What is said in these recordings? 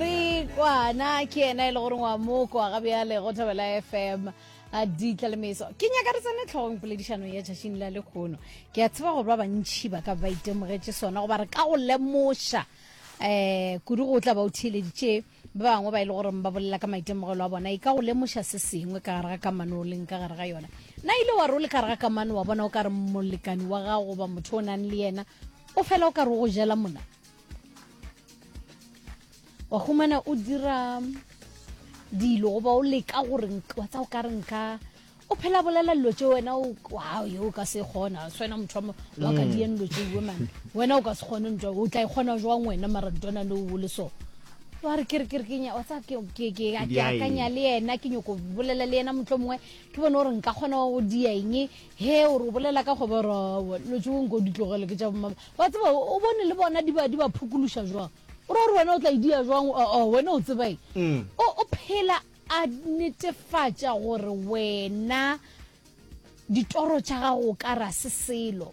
Kwana ke yena e le gore wa mo kwa ga bjale go thabela fm a ditlalemeso ke nyaka re tsene tlhogong poledišanong ya tšatšing la lekgono ke a tseba gore ba bantšhi ba ka ba itemogetše sona goba re ka go lemoša um kudu go tla ba o theeleditše ba bangwe ba e le gore ba bolela ka maitemogelo a bona e ka go lemoša se sengwe ka gare ga kamano o leng ka gare ga yona na ile wa re o le ka gare ga kamano wa bona o ka re molekani wa gago goba motho o nang le yena o fela o ka re o go jela mona wa humana o dira dilo goba o leka gore wa tsa o ka re nka o phela bolela dilo tse wena wow yo o ka se kgona swena motho wa ka mm. dien dilo tse woman wena o ka se kgone ntwa o tla ikgona e jwang wena mara ntwana no o le so wa re kere kere kenya wa tsa ke ke ke akanya le yena ke nyoko bolela le yena motho mongwe ke bone gore nka kgona go dia eng He, o re o bolela ka kgobe, o re, Aowa, dilo tšeo nko di tlogele, ke tša bomama. Wa tseba, o bone le bona di ba, di ba phukuluša jwang. O ra gore wena o tla e dia jwang, o, o, wena o tseba eng. Mm. O, o phela a netefatša gore wena ditoro tša gago o ka ra se selo.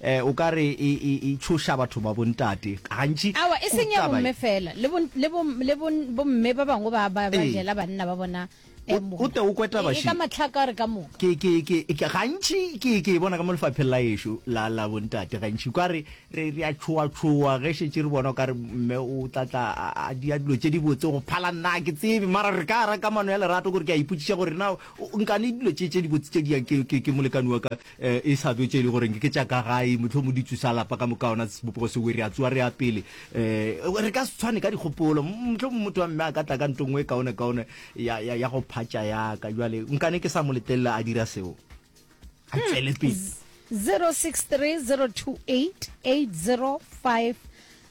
Eh, o ka re e, e, e tšhoša batho ba bontate gantši. Awa, e seng ya Taba e- bomme fela, le bo, le bo, le bo, bomme ba bangwe ba, ba, ba Ee. jela banna ba bona O- eh, mona. o te o kwe taba, E- e Shi. ka mahlaka re ka moka. ke ke ke ke- gantši ke ke e bona ka mo lefapheng la ešo la la bontate gantši ka re re re a tshoa tshoa ge šetše re bona o ka re mme o tla tla a- a dia dilo tše di botse go phala nna ha ke tsebe mara re ka ra kamano ya lerato gore ke a ipotšiša gore na o- o nkane dilo tše tše di botse tše di yang ke ke ke molekane wa ka e sa tlo tše e le gore ke tša ka gae motlho mo ditsu sa lapa ka moka ona sebopego se were a tsoa re ya pele um re ka se tshwane ka dikgopolo motlho motho wa mme a ka tla ka nto nngwe e kaone kaone ya go phatša yaka jale nkane ke sa mo letelela a dira seo a hmm. tsele pele 0630288050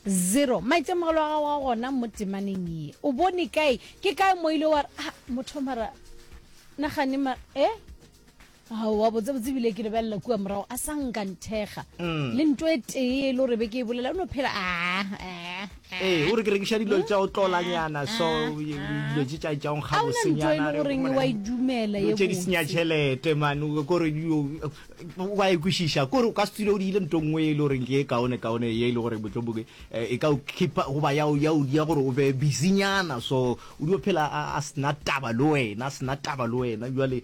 zero maitemogelo a gago a gona mo temaneng ye o bone kae ke kae mo ile wa re ah, motho mara nagane mara e eh? aowa botsebotse ebile ke lebelela kua morago a sa nka nthekga mm. le nto e tee e le gore be ke e bolela o no phela ah, ah, ah. ee o re ke rekiša dilo tša o tlolanyana so dilo tše tša tšaong ga bosenyanagoreng wa e dumela tše di senya tšhelete mane kore wa e kwešiša kore o ka se tswile o diile nto nngwe e le goreng ke e kaone kaone ye e le gore motloboke eh, e ka o keepa goba ya gore o be busynyana so o dio phela a sena taba le wena a sena taba le wena jale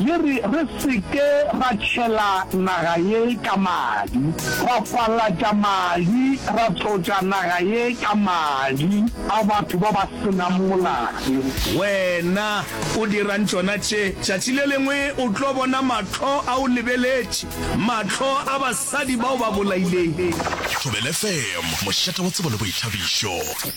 Le re, Re se ke ra tšhela naga ye ka madi, ra kwalatša madi, ra tlotša naga ye ka madi a batho ba ba se nang molato. Wena o dirang tšona tše? Tšatši le lengwe o tlo bona mahlo a o lebeletše, mahlo a basadi bao ba bolaileng. Thobela FM, mošate wa tsebo le boithabišo.